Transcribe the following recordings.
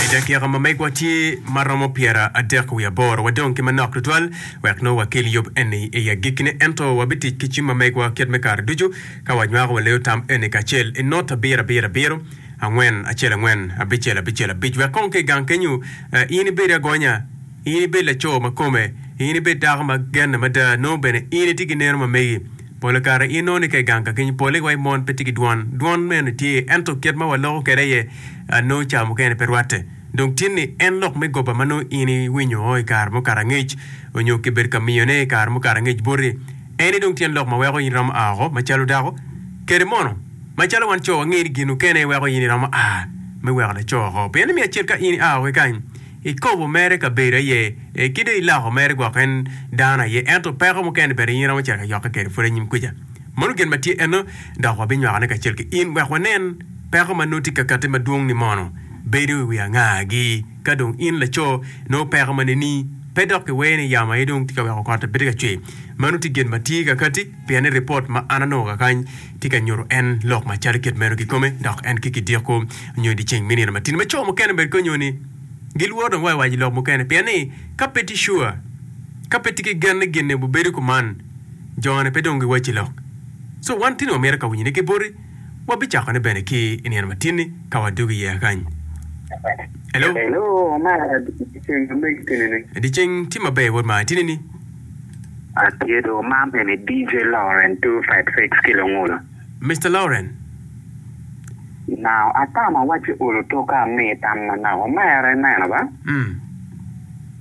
I dakika ma megwa tye ma romo pyera adek wiye aboro, wadong ki manok tutwal wek nongo wakel yub eni i agikkine. Ento wabitic ki cim ma megwa kit me kare ducu ka wanywako wa leyo tam eni kacel i not abiro abiro abiro, angwen acel angwen, abicel abicel abic, wek kong ki i gang kenyu in ibed agonya, in ibed laco ma kome, in ibed dako ma genne mada, nongo bene in itye ki neno ma megi. Pol kare inongo ni ka i gang kakenyo pole wa i mon pe tye ki dwon. Dwon meno tye, ento kit ma waloko kwede aye nongo ca mukene pe rwatte. Dong tin ni en lok me goba ma nongo in iwinyo o i kare mukato angec, onyo kibedo ka miyone i kare mukato angec boti, eni dong tyen lok ma weko in iromo a oko macalo dako? Kede mono, macalo wan co wangeyo ni gin mukene weko in iromo a me weko laco oko. Pien ni miyo acel ka in ia oko ki kany, I kobo mere kabedo aye ee ki dong i loko mere gwok en dano aye ento peko mukene bene in iromo cito yokke kede pwod anyim kwica. Mano gen matye eno dok wa binywaku ne kacel ki in wek wa nen peko ma nongo tye kakati madwong ni mono bedo i wi anga gi ka dong in laco nongo peko ma neni pe dok ki wee ni yamo aye dong tye ka weko kot aye pe tye ka cwer. Mano tye gen matye kakati pien ni report ma an anongo kakany tye ka nyuto en lok macalo kit meno kikome, dok en ki kidiko nyo i dye ceng me nino matino. Ma co mukene bed kong nyo ni gilworo dong wa i waco lok mukene, pien ni ka pe tye sure, ka pe tye ki gen ni gin-ni obibedo kuman, jone pe dong giwacci lok. Co, wan tini wamito ka winyone ki boti, wabicakone bene ki i nino matin-ni ka wadwogo iye kany. Elo. Elo, amaro dye ceng ma megi tini-ni. Dye ceng tye maber, Wod Martini-ni. Atyedo ma eni DJ Lauren two five six ki Lungulu. Mister Lauren. Nao atamo wacci olo toka amii tam ma nako mere ineno ba? Mm.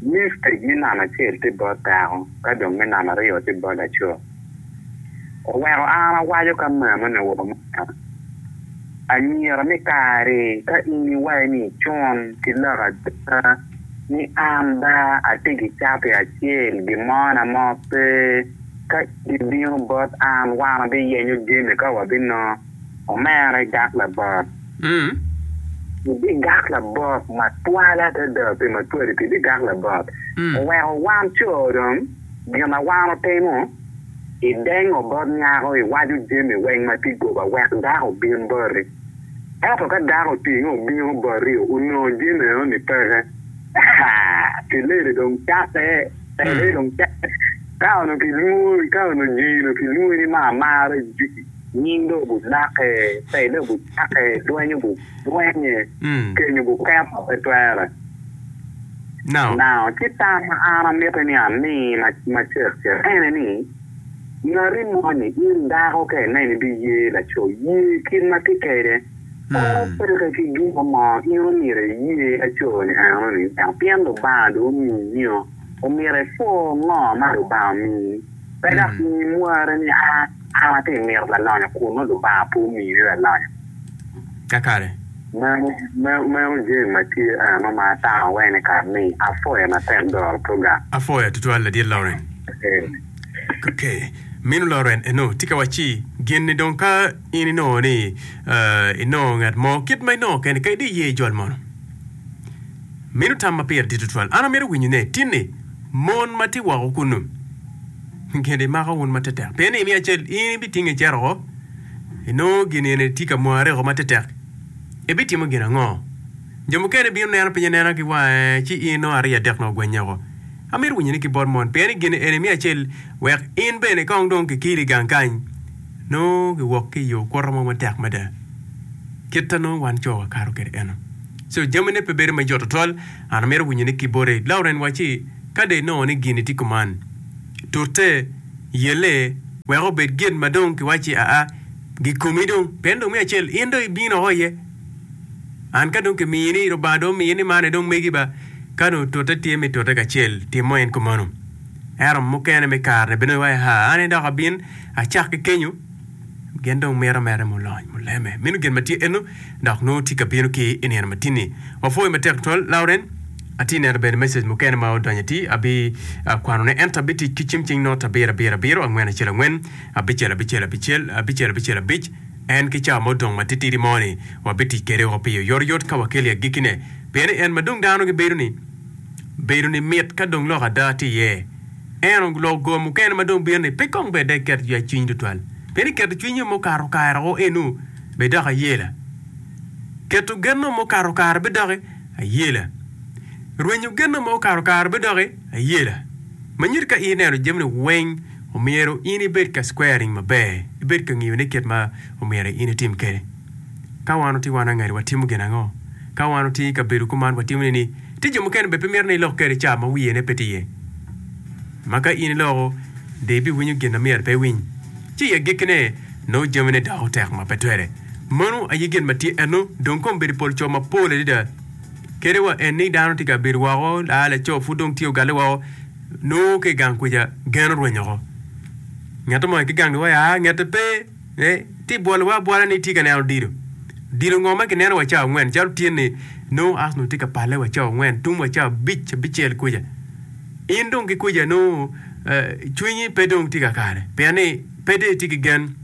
Ni stage me namba acel tye bot dako ka dong me namba aryo tye bot laco. Oweko an awaco ka memo ni wa mada. Anyira me kari ka in iwaco ni icun ki lok ada. ni an ba atye ki cati acel, gimona mo pe. Ka in ibino bot an, wan wabiyenyo jami ka wabinongo. Omera igak labot. Ibigak labot matwal adada pi matwali pi bigak labot. Oweko wan co dong, gin ma wan wutimo, idengo bot nyako, iwaco jami weng ma tye goba wek dako obin boti. Ento ka dako otinge obino boti onongo jami meno ni peke, haa, kileli dong cakke, keleli dong cakke. Ka onongo kilwongo, ka onongo jii onongo kilwongi ni ma amara jiki, nying dong obi lake, pele obi cake, dweny obi dwenye, keny obi keto, pe twere. Now, ci tam ma an amiti ni ami ma cek cek ene ni, Ngati moni, in dako, ka ineno idye yer laco, ye kit ma tye kede. Kor opeke ki gin mo mo, in omyero iye laco-ni enoni dok pien Lubanga dong omiyio, omyero ipwo ngo ma Lubanga omiyi. Pe dok imi mwari ni, An atye mito lalonyo kun nongo Lubanga pe omiyo ni lalonyo. Kakare. Meno jami ma tye ano ma atamo wene i kare ni? Apwoya matek doro program. Apwoya tutwal ladit Lauren. Ok, minu Lauren eno tye ka wacci gin ni dong ka in inongo ni inongo ngat mo kit ma inongo kene kadi iye i jol mono. Minu tam ma pire dit tutwal. An amito winyo ne tin ni mon ma tye woko kunu gin ni mako wun matetek pien ni imiyo acel in ibitinge icito woko. inongo gin eni tye ka mwareko matetek, ibitimo gin ango? Jo mukene bino neno piny anena ki wange, ci in nongo ariya dek nongo ogwennye oko. Amito winyoni ki bot mon, pien i gin eni me acel, wek in bene kong dong kikiri i gang kany, nongo kiwok ki i yo kwoto mo matek mada, kit ma nongo wan co wakato kwede eno. So, jamine pe bedo me jot twatwal. An amito winyoni ki bote, Lauren wacci, ka dong inongo ni gin-ni tye kuman, tute. yelle wek obed gin ma dong kiwacci aa, gikomi dong. Pien dong me acel in dong ibino woko iye. An ka dong kimiyi ni, Lubanga dong omiyi ni man aye dong megi ba, ka dong tute tye me tute kacel, timmo en kumeno. Ento mukene me kare-ni bino iwaci, Haa, an aye dok abin acak ki kenyo? Gin dong mito mere mulony, muleme. Meno gin ma tye eno, dok nongo tye ka bino ki i nino matini. Wapwoyi matek tutwal, Lauren. Atye neno bene message mukene ma odonyo ati, abi kwano ne, ento abi tic ki cim cing not abiro abiro abiro, angwen acel angwen, abicel abicel abicel, abicel abicel abic, en ki cawa ma odong ma titidi mo ni, wabi tic kede o pi oyoto yot ka wakeli agiki ne. Pien ni en ma dong dano gi bedo ni, bedo ni mit ka dong lok ada tye iye. En oloko go mukene ma dong bino-ni pe kong bed dok iketo yacwiny tutwal, pien iketo cwinyi mukato kare woko eno bed dok ayela. Keto geno mukato kare bed dok ayela. Rwenyo geno ma okato kare bed dok ayela. Manyit ka ineno jami-ni weng, omyero in ibed ka squaring maber, ibed ka ngiyone kit ma omyero in itim kwede. Ka wan otye wan angati watimo gin ango? Ka wan otye i kabedo kuman watimo nini? Tye jo mukene bene pe mito ni ilok kede ca ma wiyene pe tye iye, ma ka in iloko dong ibiwinyo gin ma myero pe iwiny, ci i agikkine nongo jamine doko tek ma pe twere. Meno aye gin ma tye enno dong kombeddi pol co mapol adada. Kede wa en ni dano tye ka bedo woko, laa laco pud dong tye ogalle woko, nongo ka i gang kwica gen orwenyo oko. Ngato mo aye ki gang liwaya ngete pe. Ee, ti bwolowa abwola ni itye ka neno dilo. Dilo ngo ma kineno wa cawa angwen, calo tye ni nongo Arsenal tye ka palle wa cawa angwen, tum wa cawa abic, abicel kuca. In dong ki kuca nongo cwinyi pe dong tye ka kare, pien ni pe dong itye ki gen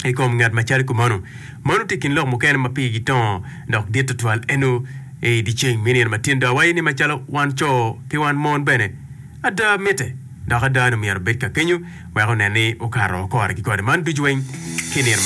i kom ngat ma calo kumeno. Mano tye i kin lok mukene ma pigi gitongo dok dit tutwal eno i dyeceng me nino matin. Dong awaci ni macalo wan co ki wan mon bene, Ada mitte, dok ada ni omyero obed ka kenyo wek onen ni okato kore ki kore man ducu weng ki nino.